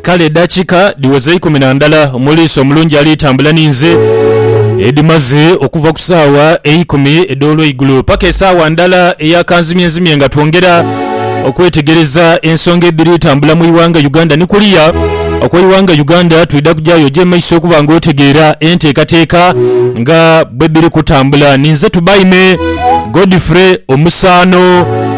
Kale edakika dhiweza eikumi na ndala omuliisi omulungi ali tambula ninze, edhimaze okuva ku saawa eikumi edh'olweigulo paka esaawa ndala eya kanzimyenzimye nga twongera okwetegereza ensonga edhiri tambula mu ighanga Uganda ni kuliya okwe ighanga Uganda. Twidha kujayo oje emaiso okuba nga otegeera entekateka nga bwedhiri kutambula. Ninze Tubaime Godfrey Omusaano.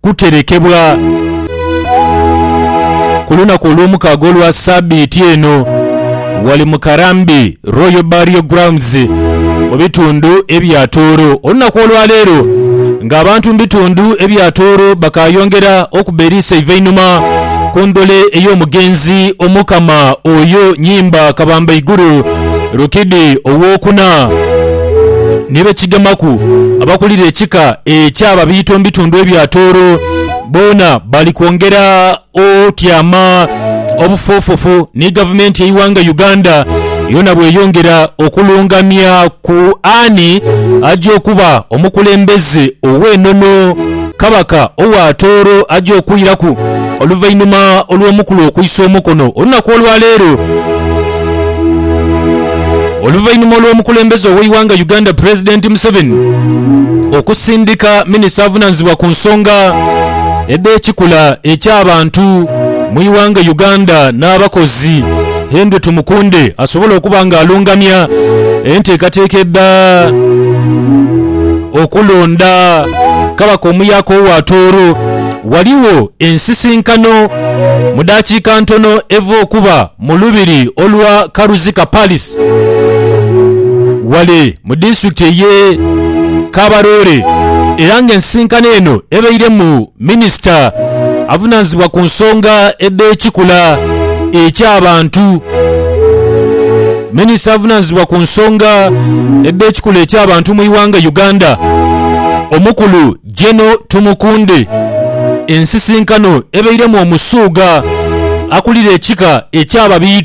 kuterekebwa ku lunaku olw'omukaaga olwa saabiiti eno ghale mu Karambi Royal Burial Grounds mu bitundu ebya Tooro. Olunaku olwa leero nga abantu mu bitundu ebya Tooro bakaayongera okuba eriiso eivainhuma ku ndhole ey'omugenzi Omukama Oyo Nyimba Kabambaiguru, Lukidi ow'okuna ni be kigemaku abakulira ekika eky'Ababiito omu bitundu ebya Tooro boona bali kwongera otyama obufoofofu ni Gavumenti y'eighanga Uganda yoona bw'eyongera okulungamya ku ani aja okuba omukulembeze ow'enono Kabaka owa Tooro aja okwiraku oluvainhuma olw'omukulu okwisa omukono olunaku olwa leero. Oluvainhuma olw'omukulembeze ow'eighanga Uganda Pulezidenti Museveni okusindika minisita avunanizibwa ku nsonga edh'ekikula eky'abantu mu ighanga Uganda n'abakozi Henry Tumukunde asobole okuba nga alungamya enteekateeka edha Okulonda Kabaka omuyaaka owa Tooro, ghaligho ensisinkano mu dakiika ntono eva okuba mu lubiri olwa Karuzika Palace ghale mu disitulikiti eye Kabarole era nga ensisinkano eno ebairemu Minisita avunaanyizibwa ku nsonga edh'ekikula eky'abantu Minisita avunaanyizibwa ku nsonga edh'ekikula eky'abantu mu ighanga Uganda, Omukulu Geno Tumukunde ensisinkano ebeiremu Omusuuga akulira ekika eky'Ababiito,